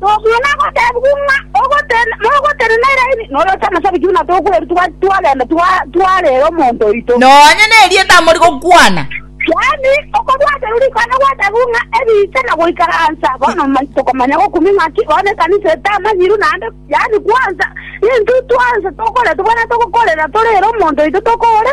Tokwana goteebigwa ng'a mogotenena Elaini, nore otamosaba ki buna tokwerutigwa twagenda twarera omonto oito? Nonya nerieta amori gokwana. Yaani, okobwaterwa rikwana gwateebigwa ng'a ebiche na goikaransa. Bono tokomanya gokumi ng'aki bono ekanisa etamanyiru naende, yaani kwansa, intwe twansa tokoretwa buna togokorera torere omonto oito tokore.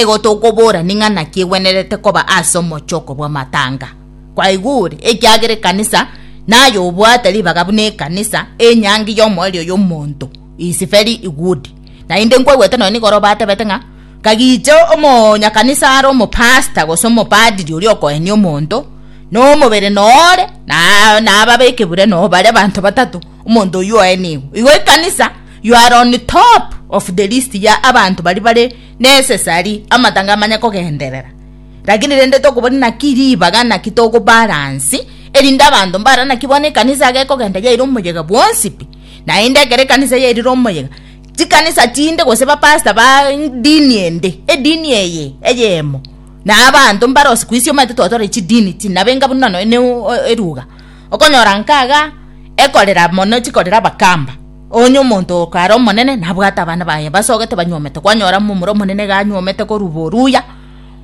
Igo tokobora ning'a naki egwenerete koba ase omochoko bw'amatanga. Kwaigure, ekiagera ekanisa naye obwate ribaga buna ekanisa, enyangi y'omoerio y'omonto is very good. Naende nkwegwete nonya nigoro batebete ng'a kagiche omonyakanisa are omopasta gose omopadiri oria okoenia omonto, nomobere noore, na nababeke bure no bare banto batato, omonto oyio oenigwe. Igo ekanisa. You are on top of the list ya abanto bari bare necessary amatanga amanya kogenderera. Lakini rende tokoboni naki ribaga naki togo balance erinde abanto mbara naki bono ekanisa age kogenda yaire omoyega bwonsi pi. Naende ekero ekanisa yairire omoyega chikanisa chinde gose bapasta ba dini ende edini eye eyemo na abanto mbara osikuisi omanyete twatwara chidini chinabe enga buna nonya ne eruga okonyora nkaga ekorera mono chikorera abakamba Onye omonto oo kare omonene, nabwate abana baye basogete banyuomete, kwanyora momura omonene iga anyuomete korwa boruya,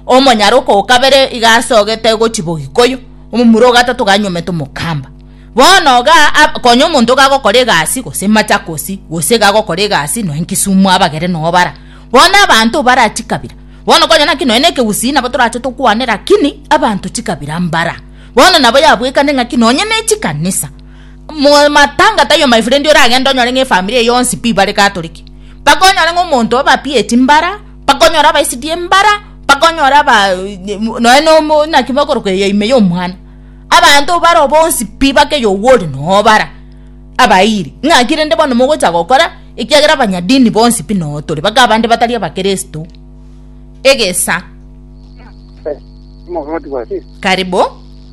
omonyara oka o kabere iga asogete gochia bogikoyo, omomura o gatato iga anyuomete omokamba. Bono iga ab- konya omonto iga agokora egasi gose machakosi, gose iga agokora egasi nonya nkisumu abagere noo bara. Bono abanto mbara chikabira, bono konya naki nonya na ekegusii nabo torache tokwane rakini abanto chikabira mbara. Bono nabo yabwekane ng'aki nonya ne chikanisa. Matangata ayo my friend oragende onyore ng'a efamiri eye yonsi pi bare Catholic, mpaka onyore ng'a omonto obapieti mbara, mpaka onyore abaisetie mbara, mpaka onyore aba nonya nomo naki bakorokwa eya ime ya omwana, abanto baro bonsi pi mpaka eyo owo ore noo bara abairi. Ng'aki rende bono mogocha gokora? Ekiagera abanyadini bonsi pi noo tore mpaka abande batari abakristo. Egesa. Karibu.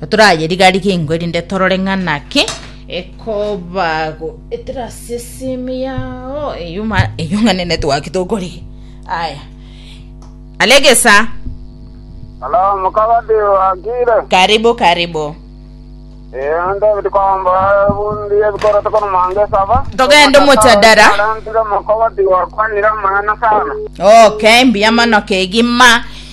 Totorayeriga-riga engo erinde torore ng'a naki ekobago etera ase esimi yao eyio ma- eyio ng'a nene twaki tokorigia aya alegesa Halo, mukaba ndiwakire. karibu karibu Eh, David Komba, bundi ebikoro tokono mange saba. Togende omojadara. Arantire mukaba ndiwakwanire amang'ana sana. okay mbuya mono kegima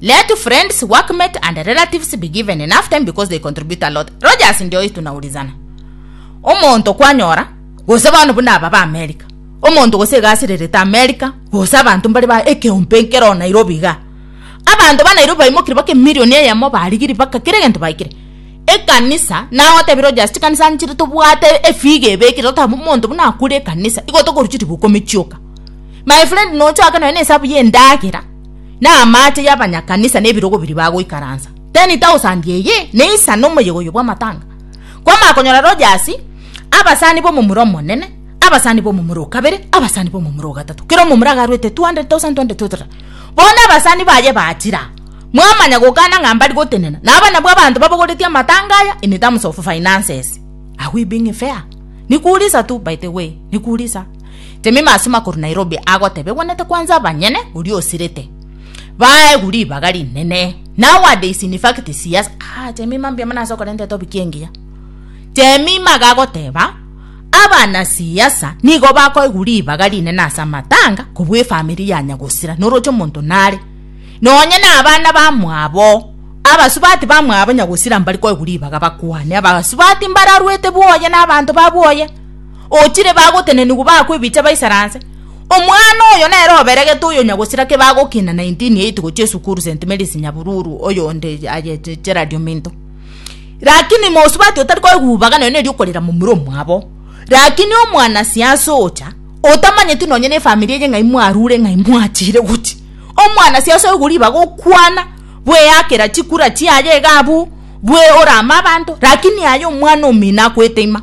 Let friends, workmates and relatives be given enough time because they contribute a lot. Rogers ndio tunaulizana. Omonto kwanyora gose bono buna aba ba America. Omonto gose egasi rerete America gose abantu mbari ba ekeumpe nkero Nairobi ga. Abantu ba Nairobi baimokire bake milioni eyemo barigiri baka kire gento baikire. Ekanisa na otebi Rogers chikanisa nchire tobwate efiga ebekire totabu omonto buna akure ekanisa. Igo tokoruchi ribuko michioka. My friend no chaka no ene sabu ye ndagera. na amaache y'abanyakanisa n'ebirogo biria bagoikaransa. 10,000 eye neisa nomoyega oyo bw'amatanga. Kwamanya konyora Rogers, abasani b'omomura omonene, abasani b'omomura okabere, abasani b'omomura ogatato, kera omomura agaruete 200,000 200,000 bono abasani baye bachira mwamanya gokana ng'a mbari gotenena na aba nabwo abanto babogoretie amatanga aya in terms of finances are we being fair? Nikurisa tu by the way nikurisa. Jemima asemo akorwa Nairobi agotebe gwenete kwanza abanyene oria osirete baegu ribaga rinene nowadays in fact sias ah, Jemima mbuya mana ase okorenta etopic engiya Jemima gagoteba abana siasa nigo bakoegu ribaga rinene ase amatanga kobua efamiri ya nyagosira noroche omonto nare nonye na abana bamwabo abasubati bamwabo nyagosira mbari koegu ribaga bakwane abasubati mbararwete bwoye na abanto babwoye ochire bagotenenigwa bakwa ebicha baisara nse. Omwana oyo nere oberegete oyo nyagosira ke bagokina 1980 gochia esukuru St Mary's Nyabururu oyo onde aye Gerald Ominto. Lakini mosubati otari koegubaga nonya neri okorera momura omwabo. Lakini omwana siasa ocha otamanyeti nonya ne familia eye ng'ai mwarure ng'ai mwachire gochi. Omwana siasa oyo gori baga okwana bweyakera chikura chiaye iga abwo bwe orama abanto lakini aye omwana omino akoeteima.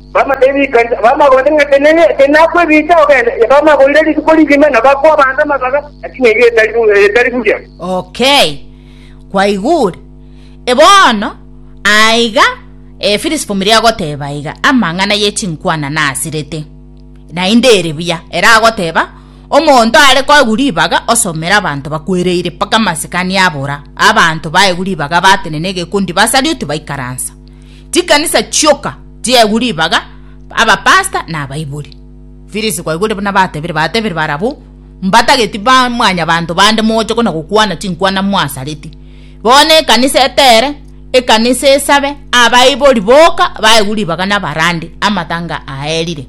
Bamagote ng'a tinakwebicha ogende, bamagoire rituko rigima, na bakwa abanto amabaga, lakini erio etari buya. Okay, kwaigure. Bono aiga Efilisipo mbiria agoteba aiga, Amang'ana ye chinkwana nasirete, naende ere buya. Ere agoteba, Omonto are koegwa ribaga osomere abanto bakwereire mpaka amasikani abora, abanto baegwa ribaga batenena egekundi basarioti baikaransa. chikanisa chioka chiegwe ribaga abapasta na abaibori firisi kwaigwere buna batebire batebire barabwo mbatageti ba mwanya banto bande moche kona gokwana chinkwana mwasareti bono ekanisa etere ekanisa esabe abaibori boka baigwe ribaga na barande amatanga aerire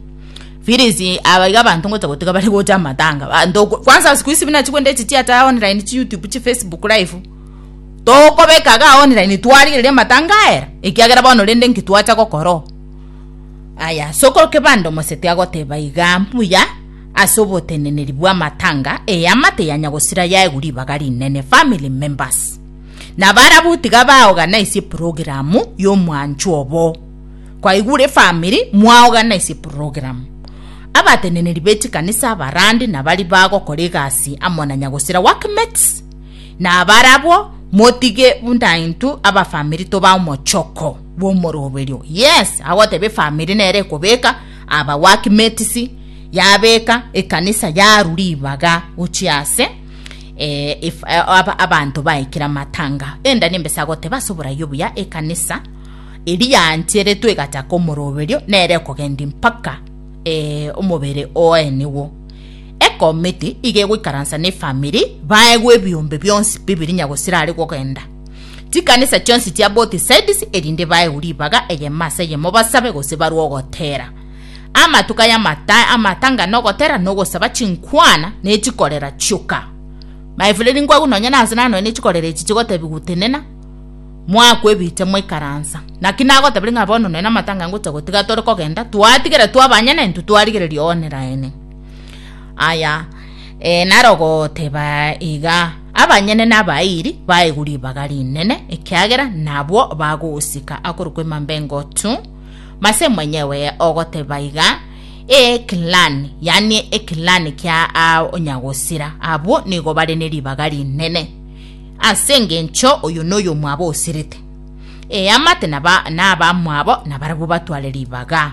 firisi abaiga abantu ngocha gotiga bari gocha amatanga banto kwanza siku hizi buna chigwende echi chiacha online chi youtube chi facebook live togokobeka iga ao online twarigereria amatanga aera ekiagera bono rende nki twacha gokora oo aya soko kebanda omosete agoteba iga mbuya ase oboteneneri bwa amatanga eyama teyanya gosira yaegu ribaga rinene family members nabarabu tiga baoganaisie programu ya omwancho obo kwaigure efamiri mwaoganaisie programu abateneneri be chikanisa abarandi nabari bagokora egasi amo na nyagosira workmates. Nabarabwo motige buna intwe abafamiri toba omochoko bw'omoroberio. Yes, agoteba efamiri nere ekobeka aba work mates yabeka ekanisa yaru ribaga gochia ase eh, if, eh, ab- abanto baikire amatanga enda nembesa agoteba ase oborai obuya ekanisa eri yancheretwe egachaka omoroberio nere ekogenda mpaka eh, omobere oeniwo Ekomiti iga egoikaransa nefamiri baegwe ebiombe bionsi bibiri nyagosira are gogenda chikanisa chionsi chia both sides erinde baegwe ribaga eyemo ase eyemo basabe gose barwe ogotera amatuka y'amata amatanga nogotera nogosaba chinkwana nechikorera chioka my friend nkwagu nonye nase nanoe nechikorera echi chigotebi gutenena mwaku ebiche moikaransa naki nagotabire ng'a bono noe namatanga ngocha gotiga tore kogenda twatigere twabanyene intwe twarigereria one raene Aya, ee, narogoteba iga, abanyene nabairi baegwe ribaga rinene, ekiagera nabwo bagosika akorokwa emamba engotu. Mase mwenyewe ogoteba iga, ee, clan, yani eclan kia onyagosira, abwo nigo bare ne ribaga rinene, ase engencho oyo noyo mwabo osirete. Ee, amate naba nabamwabo nabarabwo batware ribaga.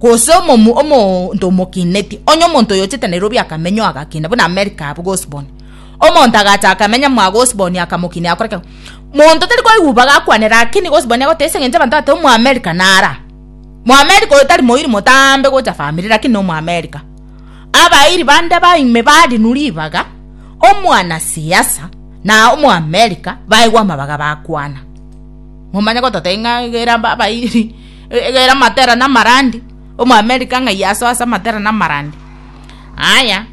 Gose omomu omonto omokineti, onye omonto oyochete Nairobi akamenya oo agakina, buna America abwo gosiboni. Omonto agacha akamenya mo agosiboni akamokina yakora kegima. Monto tari koigwa ibaga akwane lakini gosiboni agoteba ase engencho abanto bateba omo America nara. Mo America oyo tari moiri motambe gocha family lakini no mo America. Abairi bande baime barinu ribaga omwana siasa na omo America baigwa amabaga bakwana. Momanye gototebia ng'a egere abairi. Egere amatera na amarandi, Omoamerica ng'ai asoe ase amatera na amarandi? Aya,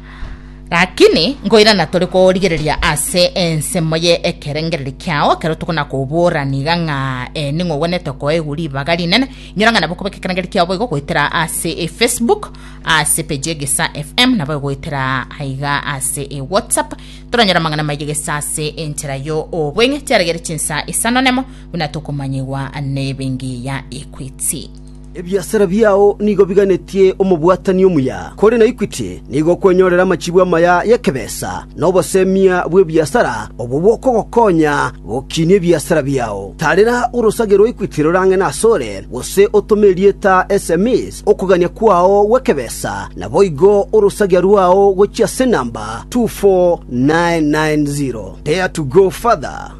rakini nkoirana tore korigereria ase ensemo ye ekerengereri kiao ekero tokona kobora niga ng'a eh, ning'o ogwenete koegwa ribaga rinene inyora ng'a nabo kobeka ekerengereri kiao boigo goetera ase e facebook ase page egesa fm nabo goetera aiga ase e whatsapp toranyora amang'ana maye gesa ase enchera yo obweng'e chiaregere chinsa isano nemo buna tokomanyigwa nebengiya Equity. Ebiasara biao nigo biganetie omobwatani omuya, kore na Equity nigo okwenyorera amachibu amaya y'ekebesa na obosemia bw'ebiasara obwo bokogokonya gokinia ebiasara biao. Tarera orosage rwa Equity rorang'ene asore, gose otome erieta sms okogania kwao gw'ekebesa, naboigo orosagia rwao gochia ase enamba 24990. Dare to go further.